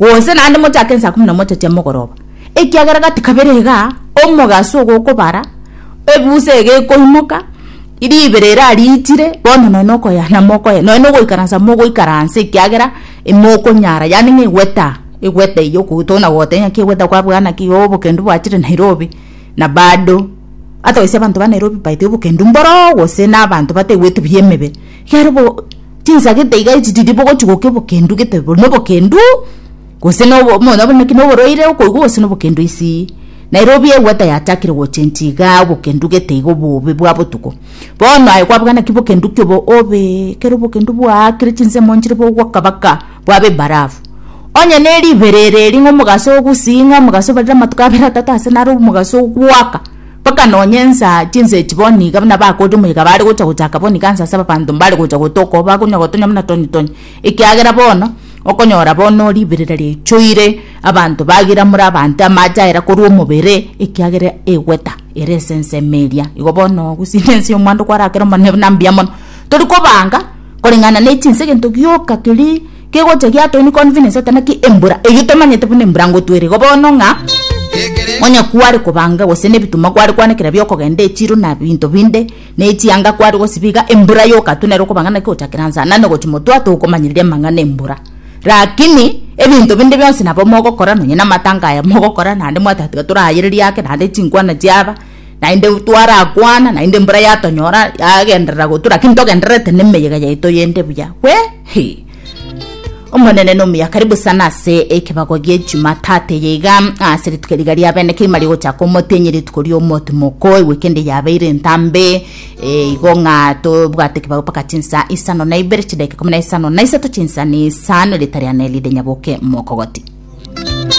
Gose naende mochake ensa ikomi na mocha chia mogoroba, ekiagera gati kabere iga omogaso ogokobara ebusa ege ekoimoka, ribera eria riitire, bono nonya nokoya namokoya, nonya nogoikaransa mogoikaransa ekiagera imokonyara, yaani ng'a egweta, egweta eywo okoigwa tokona goteba ng'aki egweta kwabwaa naki oo obokendu bwachire Nairobi, na bado, hata gose abanto ba Nairobi baito obokendu mboro gose na abanto bataigweti buya emebere. Ekero bo tinsagete iga echi tiri bogochia gokia obokendu gete bori na obokendu gose na obo muna naki na oborwaire okoigwa gose na obokendu isi naira obiegwe tayachakire gochenchia igaa obokendu gete iga obobe bwa botuko bono aye kwabwate naki bokendu ki obo obee ekero obokendu bwaakire chinsemo nchire bogwoka baka bwabe ebarafu onye ne ribere ere eri ng'a omogaso ogusii ng'a omogaso obarire amatuko abere atato ase naro omogaso ogwaka. Mpaka nonya ensa chinsa echi boni iga buna bakoete omoika bare gocha gochaka boni iga nsa ase abanto mbare gocha gotoka oo bakonywa gotonya buna tonye tonye, ekiagera bono okonyora bono riberera riaichoire abanto bagira more abanto amache aira korwa omobere ekiagera egweta ere ase ensemo eria. Igo bono gose ne ense ya omwando kwara kera omonene buna mbuya mono. Tori kobanga koreng'ana ne chinsa egento gioka keria. Kegocha egia town convenience ata naki embura eyio tomanyete buna embura ngotwere igo bono ng'a onye kware kobanga gose nebituma kware kwanekera biokogenda echiro na binto binde na echianga kware gosiba iga embura yoka tu nero okobanga naki gochakera nsa nane gochi motwe atogo komanyereria amang'ana embura rakini ebinto binde bionsi nabo mogokora nonye na amatanga aya mogokora naende mwatatiga torayererie ake naende chinkwana chiaba. Naende twarakwana naende embura yatonyora yagenderera gotu lakini togendererete nemeyega yaito yende buya we hi omonene nomuya karibu sana ase ekebago gie jumatatu eye iga ase rituko riga ria bene kegima rigochaka omotenyi rituko ria omotimoko ewekende yabeire entambe eh, igo ng'a tobwate ekebago mpaka chinsa isano na ibere chidakika ikomi na isano na isato chinsa na isano erita riane ride nyaboke mokogoti